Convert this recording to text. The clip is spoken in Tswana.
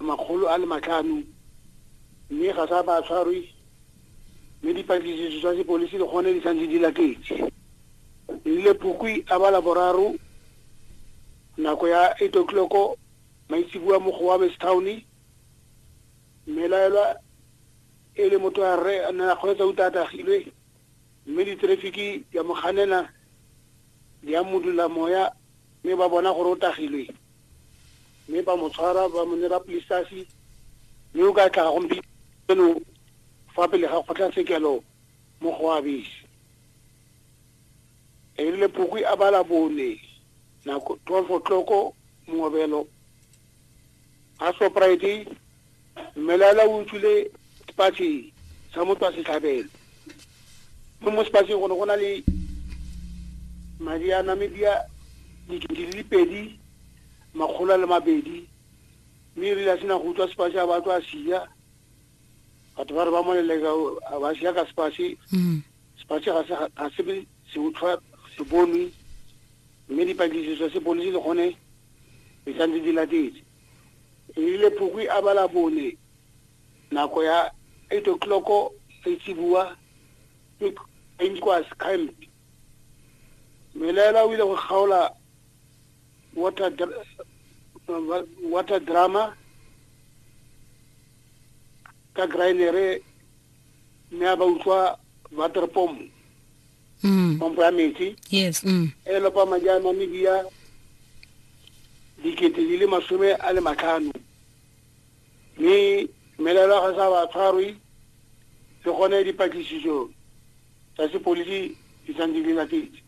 makgolo a le matlhano mme ga sa ba tshwarwe mme dipatlisiso tsa sepolisi le gone di santse di latetse. Nrile Phukwi a ba Laboraro nako ya 8 o'clock maitseboa mo Gowames Town mmelaelwa e le motho a rre a ne a kgweetsa uta a tagilwe. Mme diterefiki di a mo ganela, di a modula moya, mme ba bona gore o tagilwe. Mme ba mo tshwara, ba mo nera polisitasi, mme o ka tla gompieno fa pele ga kgotlatshekelo mo go Abisi. Erile Phukwi a ba la bone, nako 12 o'clock, mongobelo, a Shoprite mmelala o utswile sepatšhe sa motho wa setlhabelo mo mo sepatšheng go ne go na le madi a namibia dikete di le pedi makgolo a le mabedi mme e rile a sena go utlwa sepatšhe a batlo a sia batho ba re ba moleleka ba sia ka sepatšhe mm. sepatšhe ga se se utlwa se bonwe mme dipatlisiso sepodisi le gone di santse di latetse e rile phukwi a bala bone nako ya eight o'clock seitsibua ke enquas camp melaela o ile go kgaola water water drama ka grinere mme a ba utlwa water pomp mm. pompo ya metsi yes mm. e lopa madi a namibia dikete di le masome a le matlhano mme melelo ga sa ba tshwarwe le gone dipatlisiso tsa sepodisi di santse di latetse